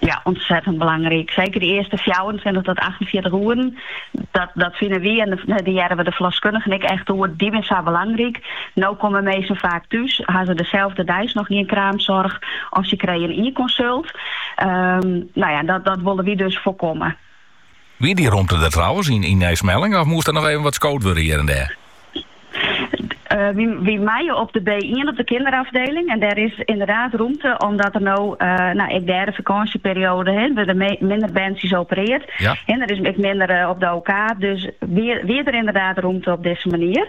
Ja, ûntsettend belangryk. Seker de earste fjouwerentweintich tot achtenfjirtich oeren. Dat, dat fine wy en dêr, dêr hearre we de ferloskunnigen ek echt oer. Dy binne sa belangryk. No komme minsken faak thús, ha se deselde deis noch gjin kraamsoarch of sy krije ien konsult. Ehm, nou ja, dat, dat wolle wy dus foarkomme. Wie dy romte der trouwens yn Nij Smellinghe of moast der noch even wat skood wurde hjir en dêr? Wy meie op de B-ien op de kinderafdeling en dêr is ynderdaad romte omdat der no ek dêr de fakânsjeperioade wurde der wat minder berntsjes opereard en der is ek minder op de OK. Dus wie der ynderdaad romte op dizze manier.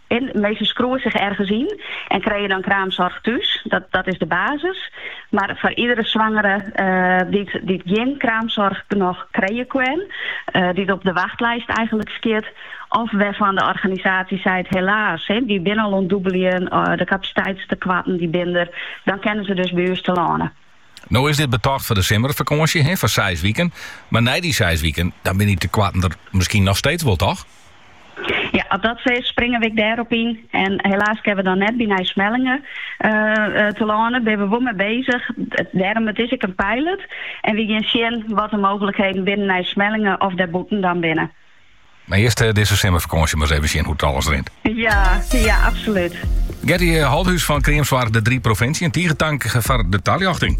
Minsken skriuwe sich ergens yn en krije dan kraamsoarch thús. Dat, dat is de basis. Mar foar iedere swangere dy't, dy't gjin kraamsoarch noch krije kin, dy't op de wachtlijst eigenlik stiet, of wêrfan de organisaasje seit, helaas, wy binne al oan it dûbeljen, de kapasiteitstekoarten dy binne der, dan kinne se dus by ús telâne. No is dit betocht foar de simmerfakânsje, foar seis wiken. Mar nei dy seis wiken, dan binne dy tekoarten der miskien noch steeds wol, toch? Ja, as dat sa is, springe we ek dêr op yn. En helaas kinne we dan net by Nij Smellinghe telâne. Binne we wol mei bezich. Dêrom, it is ek in pilot. En we gean sjen wat de mooglikheden binne yn Nij Smellinghe of dêrbûten dan binne. Mar earst dizze simmerfakânsje mar ris even sjen hoe't it alles rint. Ja, ja, absolút. Gertie Holthus fan Kreamsoarch De Drie Provinsjen, tige tank foar de taljochting.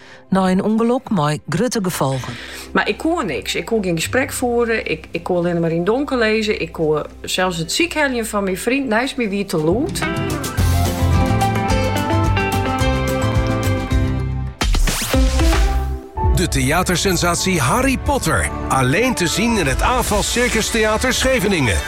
Nei in ûngelok mei grutte gefolgen. Mar ik koe niks. Ik koe gjin gesprek foere, ik koe allinne mar yn donker lizze, ik koe sels it sykheljen fan myn fryn neist my wie te lûd. De theatersensatie Harry Potter. Alleen te zien in het AFAS Circus Theater Scheveningen.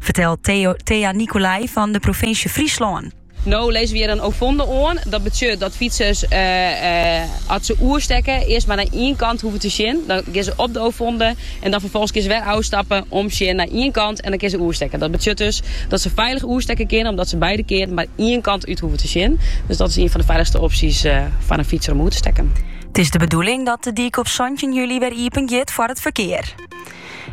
Fertelt Thea Nicolai fan de provinsje Fryslân. No lizze we hjir in ovonde oan. Dat betsjut dat fytsers as se oerstekke earst mar nei ien kant hoeven te sjen. Dan gean se op de ovonde en dan ferfolgens kinne se wer ôfstappe, omsjen nei ien kant en dan kinne se oerstekke. Dat betsjut dus dat se feilich oerstekke kinne omdat se beide kearen mar ien kant út hoeven te sjen. Dus dat is ien fan de feilichste opsjes foar in fytser om oer te stekken. It is de bedoeling dat de dyk op santjin july wer iepen giet foar it ferkear.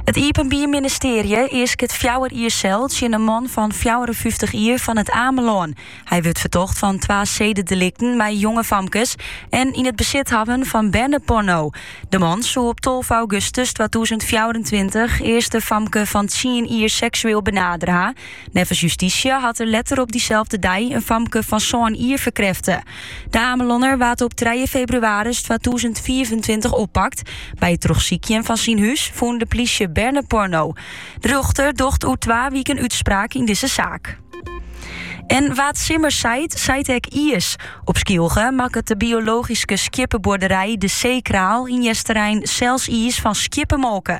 It Iepenbier Ministearje easket fjouwer jier sel tsjin in man fan fjouwerenfyftich jier fan It Amelân. Hy wurdt fertocht fan twa sededelikten mei jonge famkes en it yn besit hawwen fan berneporno. De man soe op tolve augustus twatûzen fjouwerentweintich earst in famke fan tsien jier seksueel benadere ha. Neffens justysje hat er letter op dyselde dei in famke fan sân jier ferkrêfte. De Amelonner waard op trije febrewaris twatûzen fiifentweintich oppakt. By it trochsykjen fan syn hûs fûn de plysje berneporno. De rjochter docht oer twa wiken útspraak yn dizze saak. En wa't simmer seit, seit ek iis. Op Skylge makket de biologyske skjippebuorderij De Zeekraal yn Easterein sels iis fan skjippemolke.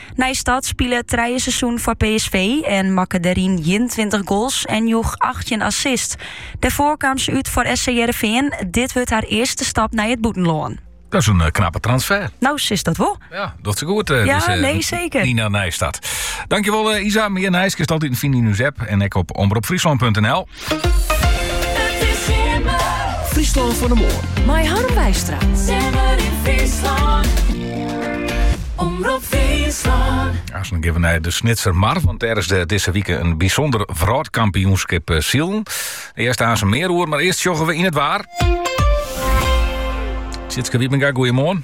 Nijstad spile trije seizoenen foar PSV en makke dêryn 21 goals en joech 18 assists. Dêrfoar kaam se út foar SC Heerenveen. Dit wurdt har earste stap nei it bûtenlân. Dat is in eh, knappe transfer. No, sis dat wol. Ja, docht se goed. Eh, ja, dus, eh, nee, seker. Nina Nijstad. Dankjewel Isa. Mear nijs kinst altiten fine yn ús app. En ek op omropfryslan.nl. Fryslân fan 'e Moarn. Mei Harm Wijstra. Simmer in Fryslân. Omrop Fryslân. Aansen geane we nei de Snitser Mar, want dêr is de, dizze wike in bysûnder wrâldkampioenskip eh, silen. Hearst aansen mear oer, mar earst sjogge we nei it waar. Tjitske Wiepenga, goeiemoarn.